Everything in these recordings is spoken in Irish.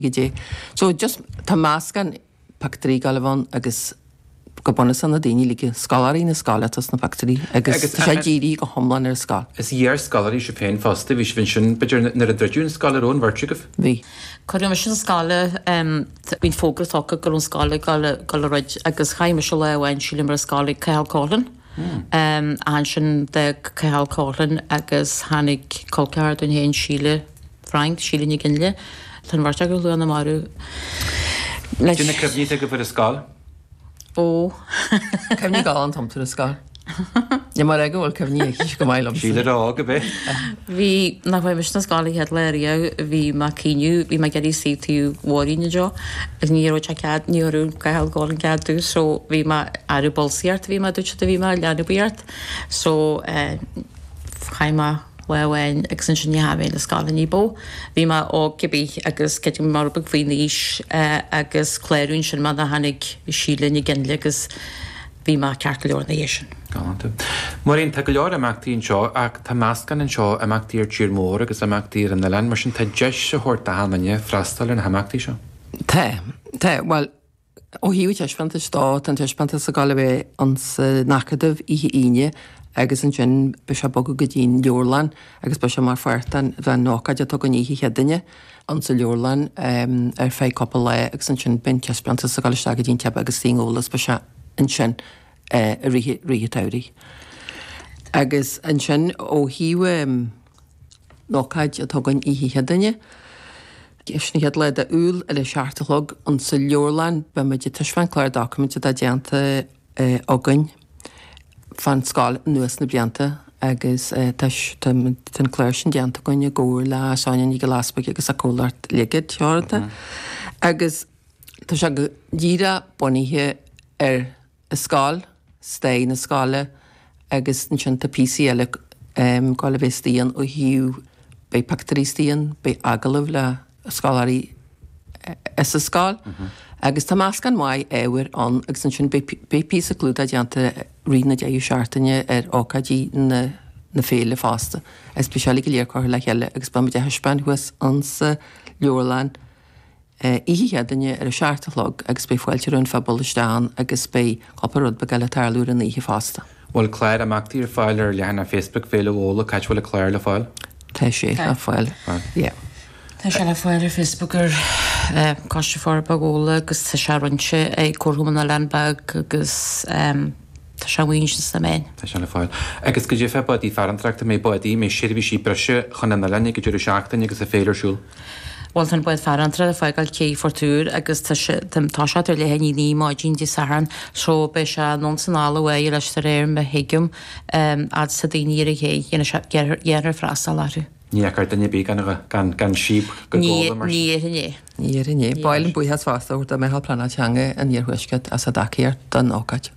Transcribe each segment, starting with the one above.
Goidé? So, just, tá meascán pictiúirí ag goil a bheith ann agus go bunúsach na daoine, like, scoláirí na scoile atá sna pictiúirí agus tá sé dírithe go hiomlán ar an scoil. Is iar-scoláirí sibh féin fosta, bhí sibh ansin, b'fhéidir, nuair a druideadh an scoil, an raibh an bheirt agaibh? Bhí. Cuireadh mise 'na scoile, em, bhí fógra tugtha go raibh an scoil ag goil, goil a dhruid agus chaith mise lá amháin, sílim, ar an scoil ag Cathal Coughlan, Ansin d'fhág Cathal Coughlan agus tháinig colceathar dúinn féin, Síle Frank, Síle Nic Fhionnghaile. Tá an bheirt acu ar shlua na marbh anois. Goidé na cuimhní atá agaibh ar an scoil? Cuimhní galánta iontu na scoil. Níl mé ag rá go bhfuil cuimhní aicise chomh maith liom. Síle óg a bhí. Bhí, nuair a chuaigh mise 'na scoile an chéad lá riamh, bhí mé ag caoineadh, bhí mé ag iarraidh suí ag taobh Mháirín anseo agus ní thabharfadh sé cead, ní thabharfadh Cathal Coughlan cead domh so bhí mé aire bolsaí ort a bhí mé a dúirt siad a bhí mé, leanbaíocht so eh chaith mé lá amháin agus ansin ní tháinig mé 'na scoile ní ba mhó, bhí mé óg cibé agus bhí mé rud beag faoin aois eh agus cláraíodh ansin mé nuair a tháinig Síle Nic Fhionnghaile agus Bhí mé ceart go leor ina dhiaidh sin. Galánta. Máirín, Tá go leor imeachtaí anseo ach tá meascán anseo, imeachtaí ar tír mór agus imeachtaí ar an oileán, mar sin tá deis á thabhairt d'achan duine freastal ar na himeachtaí seo. Tá, tá. Bhuel, ó thaobh an taispeántais de, tá an taispeántas ag dul a bheith insan Acadamh oíche Aoine agus ansin beidh sé ag bogadh go dtí'n Leabharlann agus beidh sé mar pháirt den den ócáid atá againn oíche Chéadaoine. insa leabharlann ar feadh cúpla lá agus ansin beidh an taispeántas ag dul isteach go dtí an Teach Beag, san ionad eolais, beidh sé ansin i rith rith an tsamhraidh. Agus ansin ó thaobh an ócáid atá againn oíche Chéadaoine, sin an chéad lá de Iúil ar a seacht a chlog insa leabharlann beimid ag taispeáint clár doiciméide atá déanta againn. fán scoil anuas na blianta agus tá an clár sin déanta againn i gcomhar le Sonia Nic Giolla Easbuig agus a comhlacht Ligid Teoranta agus tá sé go díreach bunaithe ar an scoil, stair na scoile agus ansin tá píosaí eile ag goil a bheith istigh ann ó thaobh, beidh pictiúirí istigh ann, beidh agallamh le. scoláirí sa scoil agus tá meascán maith ábhair ann agus ansin beidh píosa clúdaigh déanta i rith na deireadh seachtaine ar ócáidí na na féile fosta agus beidh sé uilig go léir curtha le chéile agus beimid á thaispeáint thuas insa leabharlann oíche Chéadaoine ar a seacht a chlog agus beidh fáilte roimh an phobal isteach ann agus beidh cúpla rud beag eile ag tarlú ar an oíche fosta. Bhfuil clár imeachtaí ar fáil ar leathanach Facebook Féile Ghabhla? Cá háit a bhfuil an clár le fáil? Tá sé Tá. le fáil yeah. Tá sé le fáil ar Facebook ar eh, Coiste Forbartha Ghabhla agus tá sé roinnte ag Comharchumann na nOileán Beag agus em, tá sé amuigh ansin sna meáin. Tá sé le fáil. Agus goidé fá bádaí farantóireachta, an mbeidh bádaí, an mbeidh seirbhísí breise chun an oileáin don deireadh seachtaine agus an fhéile ar siúl. Bhuel, tá an bád farantóireachta ag fágáil cé Phort Iúir agus tá sé, ag toiseacht ar leath i ndiaidh a naoi maidin Dé Sathairn, so beidh sé anonn is anall ar feadh an lae is de réir mar a thuigim, fhad is atá daoine ar an ché, dhéanfaidh sé, dhéanfaidh, dhéanfaidh freastal orthu. Ní fhágfar duine ar bith gan, gan, gan síob go Gabhla mar sin? Ní dhéarfainn é. Ní dhéarfainn é. Ba mhaith linn buíochas fosta do Mheitheal Pleanála Teanga an Iarthuaiscirt as a dtacaíocht don ócáid.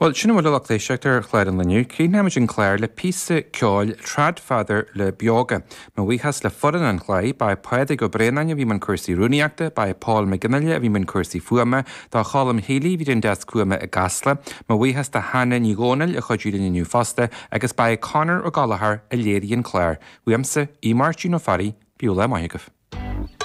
Bhuel, sin a bhfuil, a lucht éisteachta ar chlár an lae inniu. Críochnaímid an clár le píosa ceoil Tradfather le Beoga. Mo bhuíochas le foireann an chláir, ba é Pádraig Ó Braonáin a bhí i mbun cúrsaí rúnaíochta, ba é Paul Mac Fhionnghaile a bhí i mbun cúrsaí fuaime, ba é Colm Healy a bhí ar an deasc fuaime i gCasla. Mo bhuíochas do Hannah Ní Dhomhnaill a chuidigh linn inniu fosta, agus ba é Conor Ó Gallchóir a léirigh an clár. Uaimse, Aodh Máirtín Ó Fearraigh, bíodh lá maith agaibh.